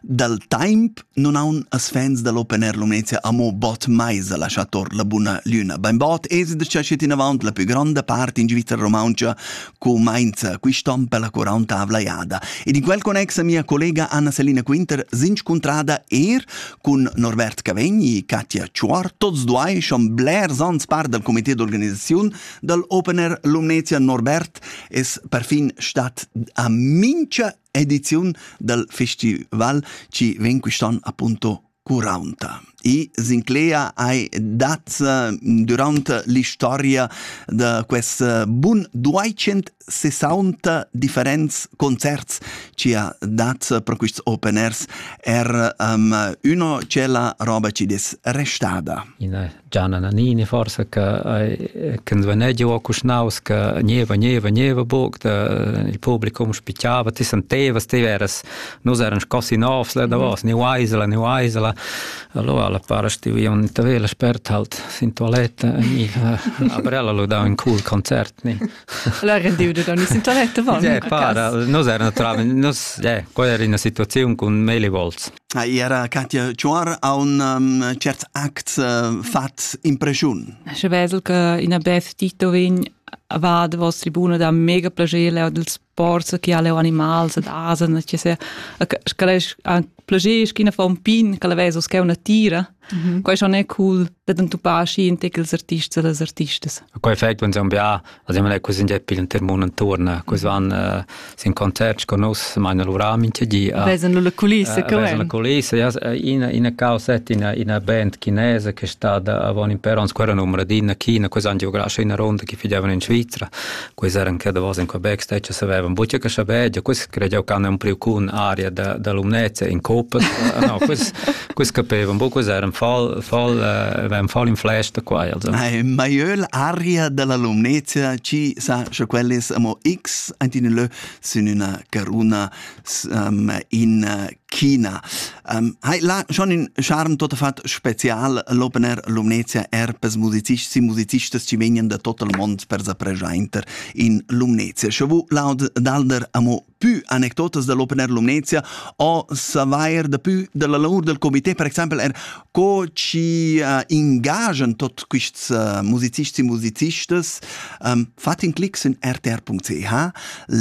Dal temp non haun as fans da l'Open Air Lumnezia amo bod mais a lasciar tor la buna lüna. Bainbod es da chat inavant la pü gronda part in Svizzera Romauncha cumainza quist'on per la quarantavla jada. Ed in quel connex a mia collega Anna-Selina Quinter s'inscuntrada er cun Norbert Cavegni e Katja Chuor, tots duai schon blers ans part dal comité d'organisaziun dal Open Air Lumnezia. Norbert es perfin stat a mincha ediziun dal festival ci vegn quist'an appunto Curaunta. I s'inclea ai dat durant l'istoria da quest bun 260 differents concerts ci ha dat pro quists open airs er um, uno c'è la roba ci des restada. Ina Gianna Nannini forsa che che svanegia o cuschnaus che gneva gneva gneva buc da il publicum spicciava ti senteva ste veras nus eran scossi novs la davos ni uaisela ni uaisela allora la para stivi un tavela spert halt sin toilette ni a brella lo da un cool concert ni la rendiu da ni sin toilette va ja para nus eran naturalmente nus ja quella era una situazione con mele volts era Katja Chuar ha un um, certs acts uh, fat impresiun. Sche vesel che ina beth Tito vin va da vostra tribuna da mega piacere leo dels ports che ha leo animals ed asen che se scalesch anche piacere schina fa un pin che la veso che una tira Mhm. Quai schon è cool da entupar schi in tec ils artists e las artistas. Quai effect van zambia, also man è così in epil in termon intorno, cos van uh, sin concert con us, magna lura minchia di. Uh, vesan la culissa, uh, vesan la culissa, yes, ina ina causet ina ina band chinese che sta da avon in per ans quera numero di in China, cos an geografische ina ronda che fidavano in Svizzera. quei eran che davos in Quebec stai che savevan buca che saber, ja quis credeau che hanno un priocun aria da da lumnezza in copas, no, quis quis capevan bu quis eran fall fall eran fall in flesta qua also. Ma jöl aria della lumnezza ci sa sche quellis amo x antin lö sin una caruna in China. Ähm, hai là schon in charme tot fat special l'opener Lumnezia er per musicisti e musicistas ci vegnan da tot il mond per sa presenter in Lumnezia. Sche vu laud d'alder amo più anecdotas dell'opener Lumnezia o savair da più della lavor del comité per exemple er co ci uh, ingagen tot quists uh, musicists e musicistas um, fat in clic in rtr.ch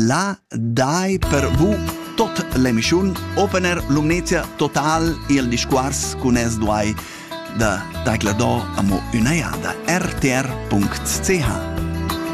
la dai per vu tot l'emischun opener lumnezia total il discours cun es duai da tagla do amo üna jada rtr.ch